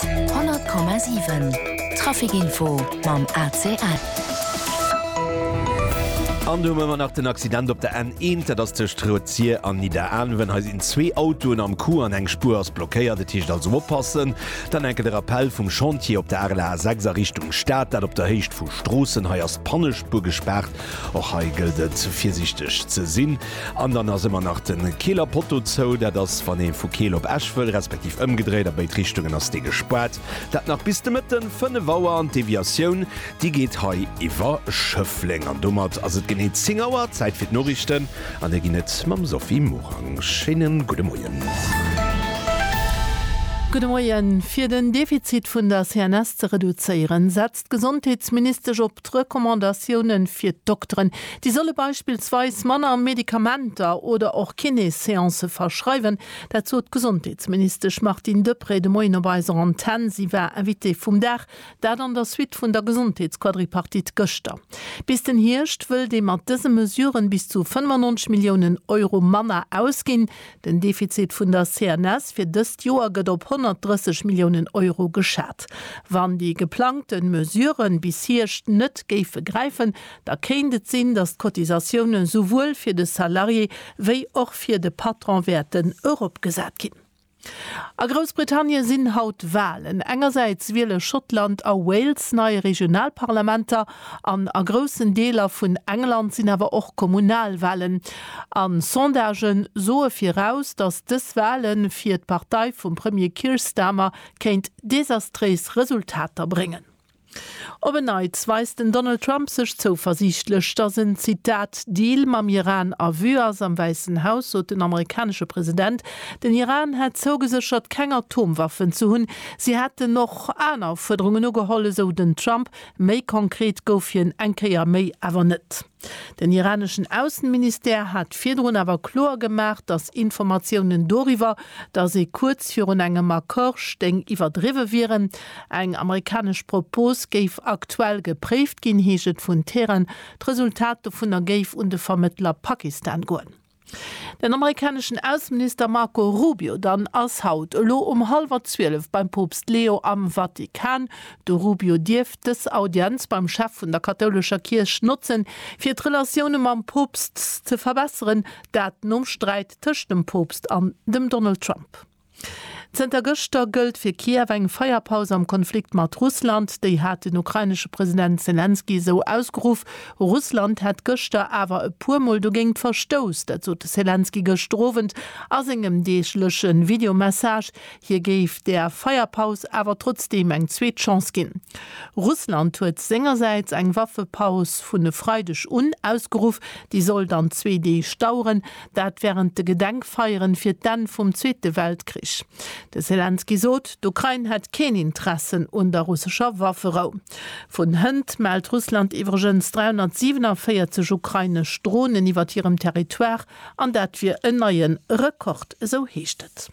100,7 Traficinfo mam ACL. An do hu mer nach den Accident op der N1, dat ass tëscht Rëtzier an Nidderaanwen. Hei sinn zwee Autoen am Coup an eng Spuer ass blockéiert. Et heescht also oppassen. Dann enke de Rappell vum Chantier op der Arler A6 a Richtung Stad, dat op der Héicht vu Stroossen. Hei ass d'Pannespuer gespaart. Och hei gëllt et virsiichteg ze sinn. An dann ass ëmmer nach de Keeler Poteau zou. Dat ass wann ee vu Keel op Esch wëll, respektiv ëmgedréit, a béid Richtungen ass dee gespaart. Dat nach bis de Mëtten 5 Auer an d'Deviatioun déi geet hei iwwer Schëffleng. An domat ass et genee 10 Auer, Zäit fir d'Noriichten an déi ginn et mam Sophie Morang. Schéine gudde Moien. Gudde Moien. Fir den Defizit vun der CNS ze reduzéieren, setzt d'Gesondheetsministesch op d'Recommandatiounen fir d'Dokteren. Déi solle beispillsweis manner Medikamenter oder och Kiné-Seancë verschreiwen. Dat sot d'Gesondheetsministesch Martine Deprez de Moien op eiser Antenn. Si war Invitée vum Dag. Dat an der Suite vun der Gesondheetsquadripartite gëschter. Bis den Hierscht wëllt ee mat dëse Mesuren bis zu 95 Milliounen Euro manner ausginn. Den Defizit vun der CNS fir dëst Joer gëtt op 130 Milliounen Euro geschat. Wann déi geplangte Mesurë bis Hierscht net géife gräifen, da kéint et sinn, datt d'Cotisatioune souwuel fir de Salarié wéi och fir de Patron wäerten eropgesat ginn. A Groussbritannien sinn haut Walen. Engersäits wiele Schottland a Wales nei Regionalparlamenter. An a groussen Deeler vun England sinn awer och Kommunalwahlen. A Sondagë soe viraus, datt dës Wahle fir d'Partei vum Premier Keir Starmer kéint desastréis Resultater bréngen. Op en Neits weist den Donald Trump sech zouversiichtlech, datt en, Zitat, Deal mam Iran a Vue ass. Am Wäissen Haus sot den amerikanesche President, den Iran hätt zougeséchert, keng Atomwaffen ze hunn. Si hätten och aner Fuerderungen ugeholl, esou den Trump, Méi konkret gouf hien eng Kéier méi awer net. Den iraneschen Aussenministère hat virdrun awer kloer gemaach, datt Informatiounen doriwwer, datt ee kuerz virun engem Accord stéing, iwwerdriwwe wieren. Eng amerikanesch Propos géif aktuell gepréift ginn, heescht et vun Teheran. D'Resultat dovunner géif un de Vermëttler Pakistan goen. Den amerikaneschen Ausseminister Marco Rubio dann ass haut elo um hallwer 12 beim Poopst Leo am Vatikan. De Rubio dierft dës Audienz beim Chef vun der kathoulescher Kierch notzen, fir d'Relatioune mam Poopst ze verbesseren, dat nom Sträit tëscht dem Poopst an dem Donald Trump. Zënter gëschter gëllt fir Kiew eng Feierpaus am Konflikt mat Russland. Déi hat den ukrainesche President Selenskyj esou ausgeruff. Russland hätt gëschter awer e puer Mol dogéingt verstouss. Dat sot de Selenskyj gëschter Owend a sengem deegleche Videomessage. Hie géif der Feierpaus awer trotzdeem eng zweet Chance ginn. Russland huet sengersäits eng Waffepaus vun e Freideg un ausgeruff. Déi soll dann zwee Deeg daueren. Dat wärend de Gedenkfeieren fir d'Enn vum Zweete Weltkrich. De Selenskyj sot, d'Ukrain hätt keen Interessen un der russescher Wafferou. Vun hënt mellt Russland iwwregens 347 ukrainesch Dronen iwwert hirem Territoire an dat wier en neie Rekord, esou heescht et.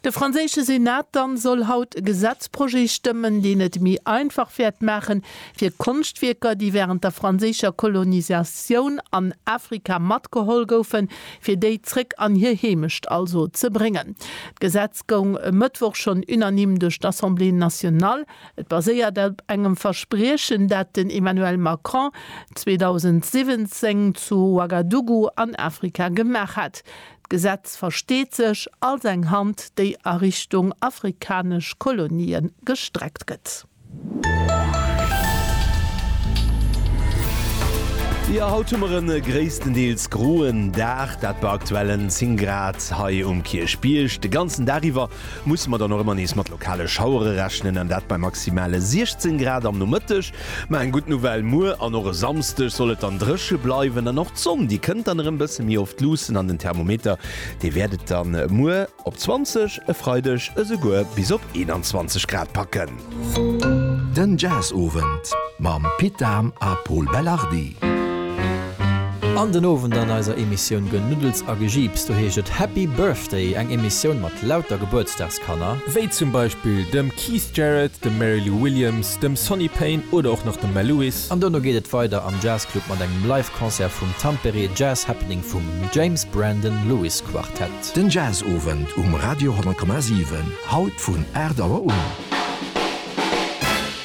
De franséische Senat dann soll haut e Gesetzprojet stëmmen, deen et méi einfach wäert maachen, fir Konschtwierker, déi wärend der franséischer Kolonisatioun an Afrika matgeholl goufen, fir déi zréck an hir Heemecht also ze bréngen. D'Gesetz goung e Mëttwoch schonn unanime duerch d'Assemblée nationale. Et baséiert op engem Verspriechen, dat den Emmanuel Macron 2017 zu Ouagadougou an Afrika gemaach hat. D'Gesetz versteet sech als eng Hand, déi a Richtung afrikanesch Kolonien gestreckt gëtt. Jo, haut hu mer e gréisstendeels groen Dag, dat bei aktuellen 10 Grad hei um Kierchbierg. De ganzen Dag iwwer musse mer dann och ëmmer nees mat lokale Schauere rechnen, an dat bei maximale 16 Grad am Nomëtteg. Mä eng gutt Nouvelle, Muer an och e Samsdeg soll et dann dréche bleiwen an och d'Sonn déi kënnt dann erëm bësse méi oft luussen an den Thermometer dee wäert et dann muer op 20, e Freideg esouguer bis op 21 Grad packen. Den Jazzowend mam Pit Dahm a Pol Belardi. An den Owend an eiser Emissioun Genuddels a Gejiips, do heescht et Happy Birthday, eng Emissioun mat lauter Gebuertsdagsgratulatioune. Kanner, wéi zum Beispill dem Keith Jarrett, dem Mary Lou Williams, dem Sonny Payne oder och nach dem Mel Lewis. An dono geet et weider am Jazzclub mat engem Live Concert vum Tampere Jazz Happening vum James Brandon Lewis Quartett. Den Jazzowend um Radio 100,7, haut vun 8 Auer un.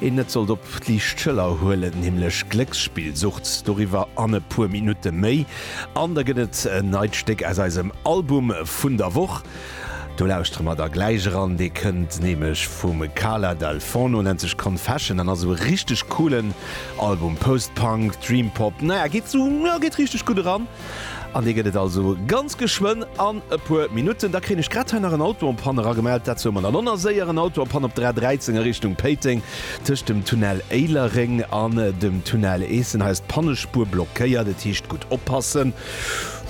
een net sollt op d'liicht Schëller huelen, nämlech Glécksspillsucht, doriwwer an e puer Minutte méi. An da gëtt et en neit Stéck aus eisem Album vun der Woch, do lauschtere mer da gläich eran, dee kënnt nämlech vum Kala Dal Forno, nennt sech Confession an ass e richteg coolen Album, Post-Punk, Dream-Pop, naja geet sou, jo geet richteg gutt eran. An dee gëtt et also ganz geschwënn an e puer Minutten. Da kréien ech grad hei nach en Auto am Panne eragemellt. Dat soe mer dann och nach séier. En Auto am Panne op der A 13 a Richtung Péiteng, tëscht dem Tunnel Éilereng an dem Tunnel Eessen. Hei ass d'Pannespuer blockéiert, et heescht gutt oppassen.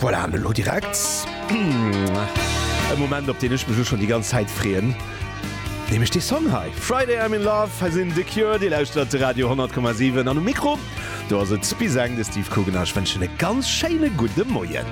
Voilà, an elo direkt e Moment, op deen ech mech elo schonn déi ganz Zäit freeën, nämlech dee Song hei, Friday I'm in Love. Hei sinn The Cure, Dir lauschtert Radio 10,7 an um Mikro, Do ass et bis eng, de Steve Kugener. Ech wënschen e ganz schéine gudde Moien.